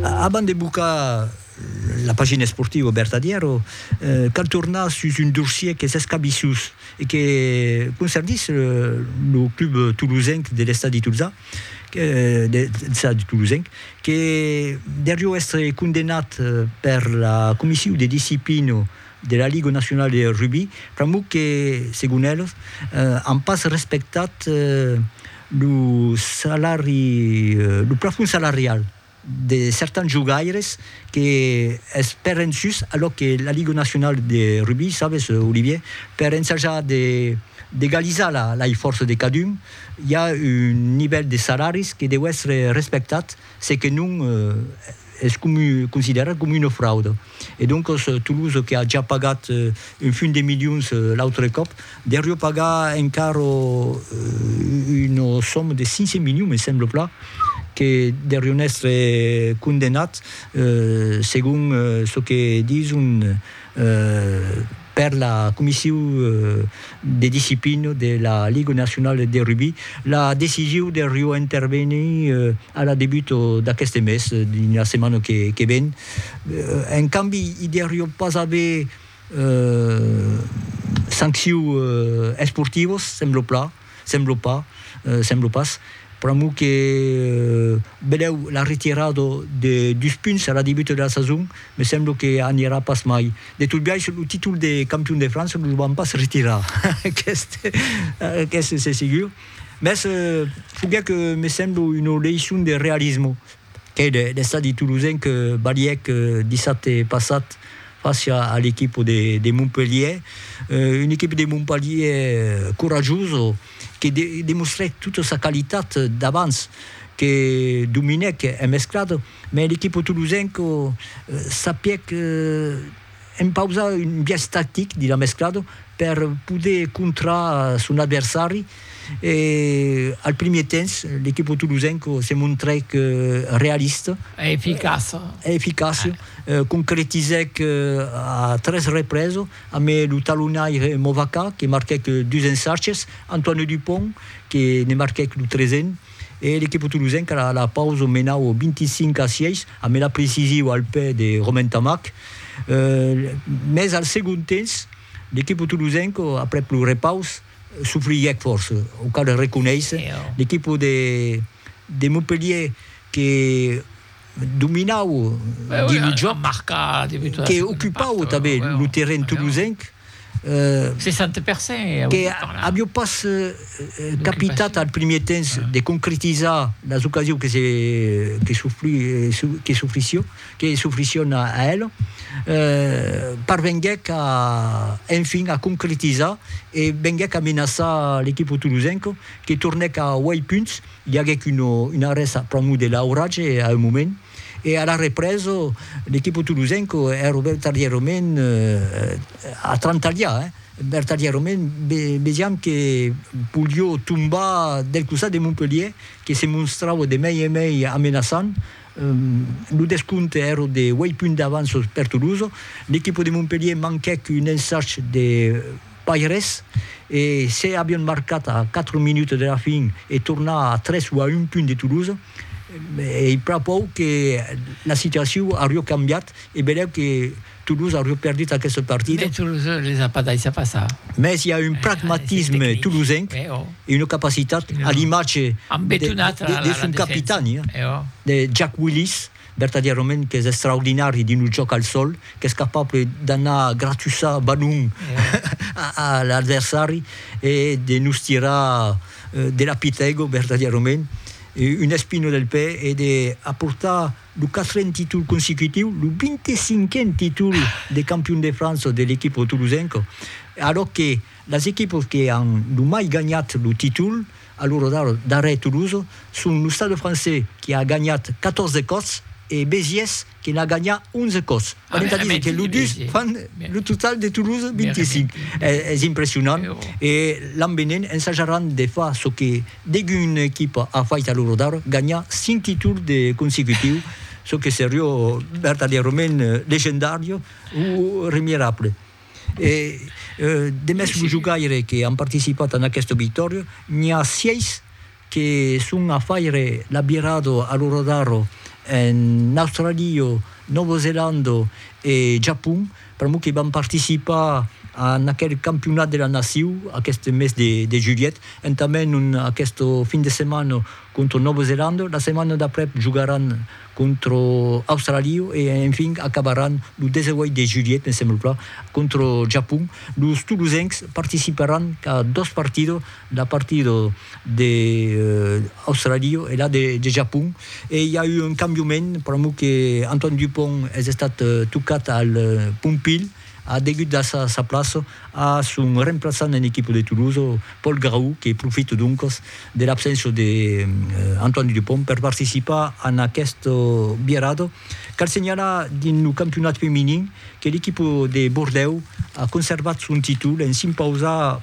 Abans de bocar la pagina esportiva au Bertadièro, cal tornar sus un dorsier qu'es escabissós e que concernís lo club tolosenc de l'Estadi Tolzà, l'Estadi Tolosenc, que derió èstre condemnat per la Comissiu de Disciplina de la Ligue nationale de rugby, pr'amor que, segon eles, an pas respectat lo salari, lo plafond salarial de certans jogaires que es pèren sus a lo que la Ligue nationale de rugby, sabes, Olivier, per ensajar de d'egalizar la la ifòrça de cadun, i a un nivèl de salaris que deu èstre respectat, se que non, es considerat coma una frauda e doncas Toulouse que a ja pagat un fum de milions l'autre còp derió pagar encara una soma de 500 milions me sembla plan que derión èstre condenat segon çò que dison Per la Comissiu de Disciplina de la Liga Nacionala de Rugbi, la decision de reointervenir a la debut d'aqueste mes, dins la setmana que ven, en cambi i deuriá pas aver sancciu esportivas, sembla plan. Semblo pas, semblo pas. Pr'amor que belèu la retirada de dus punts a la debuta de la sason, me semblo que anirà pas mai. De tot biais, lo títol de campion de França lo van pas retirar, aqueste, aqueste c'est segur. Mès foguèt, me semblo, una leçon de realisme. Qu'ei l'estadi tolosen que balhèc dissabte passat fàcia a l'equipa de Montpelhièr, una equipa de Montpelhièr corajosa que demostrèc tota sa qualitat d'abans, que dominèc en mesclada, mès l'equipa tolosenca sapièc En pausa un biais tactic de la mesclada per poder contrar son adversari e al primier temps l'equipa tolosenca se montrèc realista e eficaça, concretizèc a tres represa amé lo talonaire Movaca que marquèc dus ensarges, Antoine Dupont que ne marquèc lo tresen. E l'equipa tolosenca a la pausa menau 25 a 6 a mela precisiu al pè de Romain Tamac. Mès al segon temps l'equipa tolosenca aprèp lo repaus sofrièc fòrça, o cal reconéisser, l'equipa de Montpellier que dominau dins lo jòc, que ocupau tanben lo terren tolosenc. 60 per cent, e ausi parlar. Que avió pas capitat al primièr temps de concretizar las occasions que s'ofrissión a el, parvenguèc enfin a concretizar e venguèc a menaçar l'equipo tolosenc que tornèc a uèit punts, i aguèc un arrèst a pr'amor de l'auratge a un moment. E ara represo l'equipo tolosenco hè robertarièrament a trantalhar eh, vertarièrament vesiam que polió tombar del costat de Montpelhier que se monstrava de mei en mei amenaçant, lo descompte èra de uèit punts d'avança per Tolosa, l'equipo de Montpelhier manquèc un ensach de Pas res, e se avion marcat a 4 minutes de la fin e tornar a 3 o a un punt de Toulouse, ei prapòu que la situacion aurió cambiat e belèu que Toulouse aurió perdut aquesta partida. Mès Toulouse les a pas daissat passar. Mès i a un pragmatisme toulousenc e una capacitat a l'imatge de son capitan, de Jack Willis, Vertadièrament qu'es extraordinari dins lo jòc al sòl, qu'es capable d'anar gratussar balon a l'adversari e de nos tirar de la pitego vertadièrament una espina del pè e de aportar lo quatrent títol consecutiu, lo 25n títol de campion de França de l'equipa tolosenca, alòc que las equipas que an lo mai ganhat lo títol, A l'ora d'ara, darrèr Toulouse, son lo Stade Français qui a ganhat 14 còps e Béziers que n'a gagna 11 còps. Pas entà dire que los dus fan lo total de Toulouse 25. Es impressionant e l'an venent ensajaràn de far çò que degun equipa a fait a l'ora d'ara, ganhar 5 títols de consecutiu, çò que serió vertadièrament legendàrio o remierable. E de mès lo jogaire que an participat en aqueste obitòrio, n'i a 6 que son a faire l'abirado a lo rodaro en Australia, Nòva Zelanda e Japon, pr'amor que van participar en aquel campionat de la nacion aqueste mes de julhet, entament aqueste fin de setmana contra Nòva Zelanda, la setmana d'après jogaràn contra Australiu e enfin acabaràn lo 18 de julhet, me sembla plan, contra Japon. Los tolosencs participaràn qu'a dos partidos, la partida de Australiu e la de Japon. E i a eu un cambiament, pr'amor que Antoine Dupont es estat tocat al Pompilh, A degut a sa plaça a son remplaçant en equipa de Toulouse, Paul Grau, que profita doncas de l'abséncia de Antoine Dupont per participar en aquesta virada. Cal senhalar dins lo campionat feminin que l'equipa de Bordèu a conservat son títol en s'impausar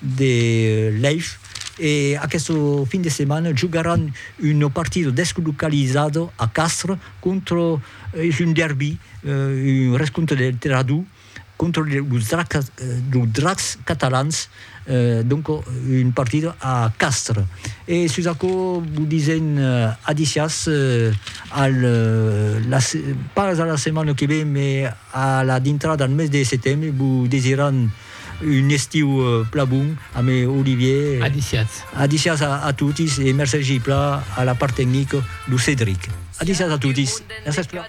de Lèish e aqueste fin de setmana jogaràn un partido deslocalizado a Castres contra es un derbi un rescontre de tèrra dur contra los Dracs catalans donc un partido a Castres e sus aquò vos disèm adiciás al pas a la setmana que ven mai a la dintrada al mes de setembre vos desiràn Un estiu pla bon ame Olivier. Adicias. Adicias a totis e mercegi pla a la part tecnic lo Cedric. Adicias a totis. Merci pla.